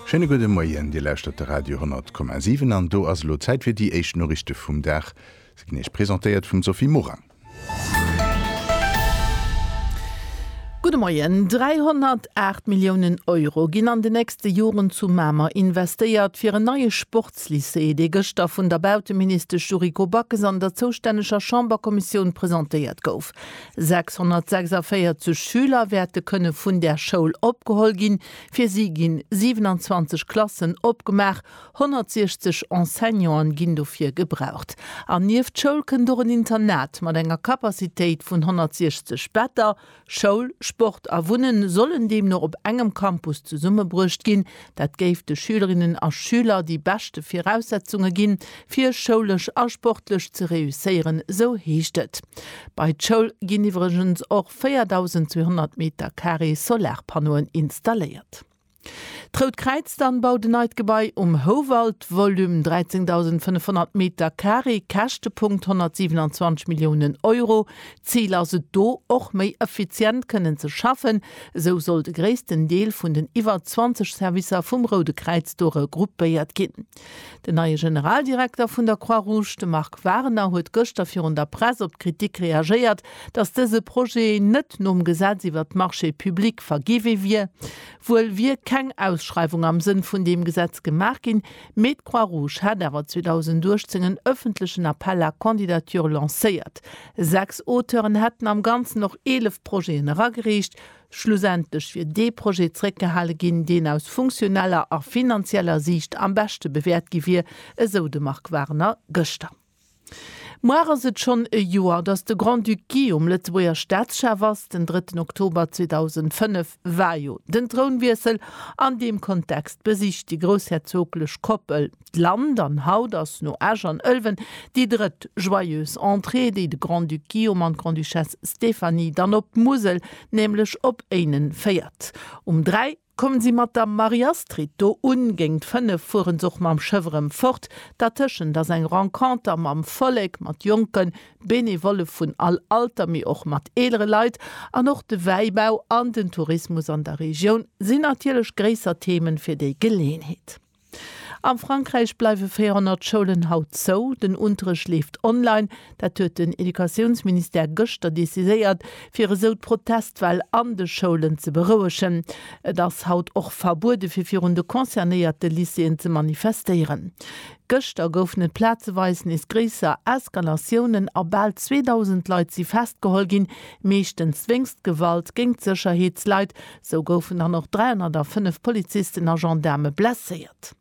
Schéine gudde Moien, Dir lauschtert de Radio 10,7 an do ass elo Zäit fir déi éischt Noriichte vum Dag. Se ginn Iech presentéiert vum Sophie Morang. Gudde Moien, 308 Milliounen Euro ginn an den nächste Joren zu Mamer investéiert, fir en neie Sportslycée, dee gëschter vun der Bauteministesch Yuriko Backes an der zoustänneger Chamberkommissioun presentéiert gouf. 646 Schüler wäerte kënne vun där Schoul opgeholl ginn. Fir si ginn 27 Klassen opgemaach, 160 Enseignanten ginn dofir gebraucht. An nieft d'Schoul kënnt och en Internat mat enger Capacitéit vun 160 Better. Schoul, Sport a Wunnen sollen deemno op engem Campus zesummebruecht ginn. Dat géif de Schülerinnen a Schüler déi beschte Viraussetzunge ginn, fir schoulesch a sportlech ze reusséieren, sou heescht et. Bei d'Schoul ginn iwwregens och 4.200 Metercarré Solarpannoen installéiert. D'Rout Kräiz dann baut en neit Gebai um Houwald, Volume 13.500 Metercarré, Käschtepunkt 127 Milliounen Euro. D'Zil ass et do, och méi effizient kënnen ze schaffen. Esou soll de gréissten Deel vun den iwwer 20 Servicer vum Roude Kräiz do regruppéiert ginn. Den neie Generaldirekter vun der Croix-Rouge, de Marc Warner, huet gëschter virun der Press op d'Kritik reagéiert, datt dëse Projet net nom Gesetz iwwer d'Marchés publics vergiwwe wier. Wuel wier keng Ausschreiwung am Sënn vun deem Gesetz gemaach ginn, Mee d'Croix-Rouge hat awer 2018 en ëffentlechen Appel à candidatures lancéiert. Sechs Auteuren hätten am Ganzen och eelef Projeten eragereecht. Schlussendlech wier dee Projet zeréckgehale ginn, deen aus funktioneller a finanzieller Siicht am beschte bewäert gi wier, esou de Marc Warner gëschter. Muar ass et schonn e Joer, datt de Grand-Duc Guillaume Lëtzebuerger Staatschef ass. Den drëtten Oktober 2005 war jo den Trounwiessel. An deem Kontext besicht déi groussherzoglech Koppel d'Land an haut ass no Esch an Ëlwen déi drëtt Joyeuse Entrée, déi de Grand-Duc Guillaume an d'Grande-Duchesse Stéphanie dann op d'Musel, nämlech op Éinen féiert. Um 3. Kommen sie mat der Marie-Astrid do un, géint 5 fueren se och mam Schëff erëm fort. Dertëschent ass eng Renconter mam Vollek, mat Jonken, Benevollen vun all Alter, mee och mat eelere Leit. An och de Wäibau an den Tourismus an der Regioun sinn natierlech gréisser Themen fir déi Geleeënheet. Am Frankräich bleiwe 400 Schoulen haut zou. Den Unterrecht leeft online. Dat huet den Educatiounsministère gëschter decidéiert, fir esou d'Protestwell an de Schoulen ze berouegen. Et ass haut och verbuede fir virun de concernéierte Lycéeën ze manifestéieren. Gëschter goufen et plazeweis nees gréisser Eskalatiounen a bal 2.000 Leit si festgeholl ginn, meeschtens wéinst Gewalt géingt d'Sécherheetsleit, Sou goufen dann och 305 Polizisten a Gendaarme blesséiert.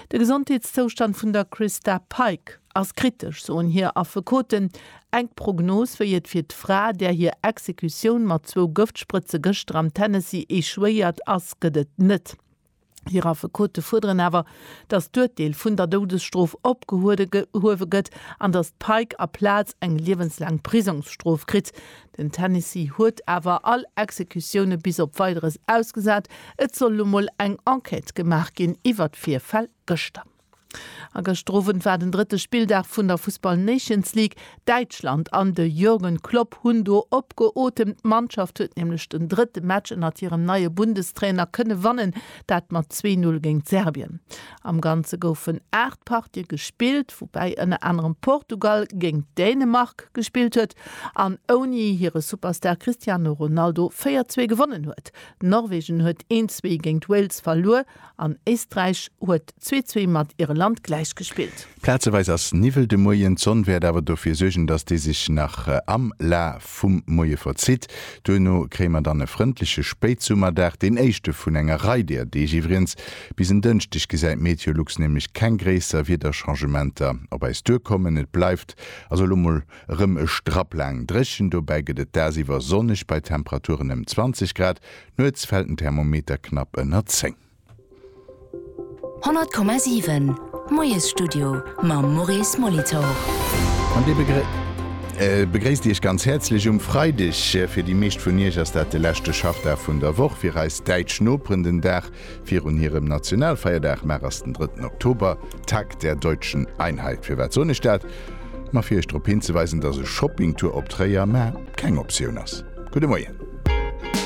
De Gesondheetszoustand vun der Christa Pike ass kritesch, soen hir Affekoten. Eng Prognos, wéi et fir d'Fra, där hir Exekutioun mat zwou Gëftsprëtze gëschter am Tennessee echouéiert ass, gëtt et net. Hir Affekote fuerderen awer, datt d'Urteel vun der Doudesstrof opgehuewe gëtt an datt d'Pike aplaz eng liewenslaang Prisongsstrof kritt. Den Tennessee huet awer all Exekutioune bis op Weideres ausgesat. Et soll elo mol eng Enquête gemaach ginn iwwer d'Virfäll gëschter. A gëschter Owend war den drëtte Spilldag vun der Fussball Nations League. Däitschland an de Jürgen Klopp hunn do opgeotemt. D'Mannschaft huet nämlech den drëtte Match ënnert hirem neie Bundestrainer kënne wannen, dat mat zwee Null géint Serbien. Am Ganze goufen 8 Partië gespillt, woubäi ënner anerem Portugal géint Dänemark gespillt huet an ouni hire Superstar Cristiano Ronaldo 4, 2 gewonnen huet. Norwegen huet 1, 2 géint Wales verluer. An Éisträich huet zwee zwee mat Irland gläich gespillt. Plazeweis ass Niwwel de Moien, d'Sonn wäert awer dofir suergen, dass dee sech nach am Laf vum Moie verzitt. Duerno kréie mer dann e frëndleche Spéitsummerdag, deen éischte vun enger Rei deeër Deeg iwwregens. Bis en Dënschdeg gesäit MeteoLux nämlech keng gréisser Wiederchangementer op äis duerkommen. Et bleift also elo mol erëm e Strapp laang dréchen, dobäi gëtt et dagsiwwer sonneg bei Temperaturen ëm 20 Grad. Nuets fält den Thermometer knapp ënner 10. 100,7 Moiesstudio mam Maurice Molitor. An dee begréisst Iech ganz häerzlech um Freideg. Fir déi meescht vun Iech ass dat de leschte Schaffdag vun der Woch, fir eis däitsch Noperen den Dag virun hirem Nationalfeierdag. Mar ass den drëtten Oktober, Tag der Deutschen Einheit. Firwat soen ech dat? Ma fir Iech drop hinzeweisen, dass e Shoppingtour op Tréier, mä keng Optioun ass. Gudde Moien.